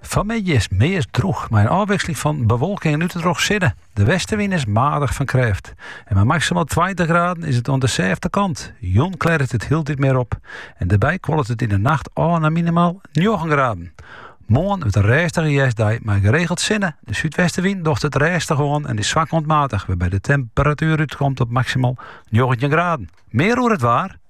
Fan 'e middei is 't meast droech, mei in ôfwiksling fan bewolking en út en troch sinne. De westenwyn is maardich fan krêft. En mei maksimaal tweintich graden is it oan de sêfte kant. Jûn klêret it hieltyd mear op. En dêrby kuolet it yn de nacht ôf nei minimaal njoggen graden. Moarn wurdt in rêstige hjerstdei mei geregeld sinne. De súdwestenwyn docht it rêstich oan en is swak oant maardich, wêrby't de temperatuer útkomt op maksimaal njoggentjin graden. Mear oer it waar.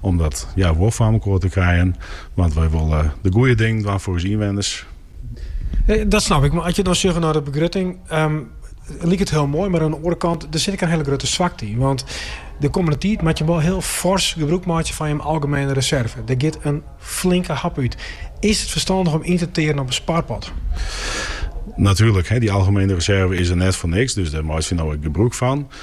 Om dat wol foar elkoar te krijen, want wy wolle wol de goede dingen dwaan foar ús ynwenners. Dat snap ik, mar as je dan sjogge nei de begrutting, liket it hiel moai, mar oan de oare kant, der sit ek in hiele grutte swakte yn. Want de kommende tiid moatte jim wol hiel fors gebrûk meitsje fan jim algemene reserve. Der giet in flinke hap út. Is it ferstannich om yn te tearen op in sparpot? Natuerlik, dy algemene reserve is der net foar niks, dus dêr meitsje we no ek gebrûk fan.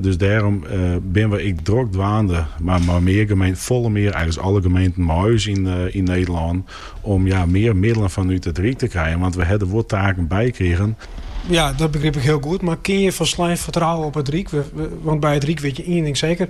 Dus dêrom binne we ek drok dwaande mei mear gemeenten, folle mear, eigentlys alle gemeenten mei ús yn Nederlân, om mear middelen fanút it Ryk te krijen. Want we ha der wol taken by krigen. Ja, dat begryp ik hiel goed. Mar kinne je folslein fertrouwen op it Ryk? Want by it Ryk wit je ien ding seker,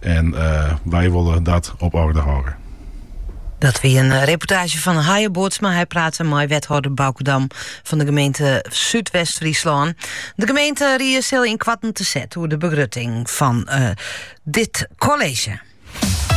En wy wolle dat op oarder hâlde. Dat wie in eh, reportaasje fan Haye Bootsma. Hy prate mei wethâlder Bauke Dam fan de gemeente Súdwest-Fryslân. De gemeenterie sil yn koarten te set oer de begrutting fan eh, dit college.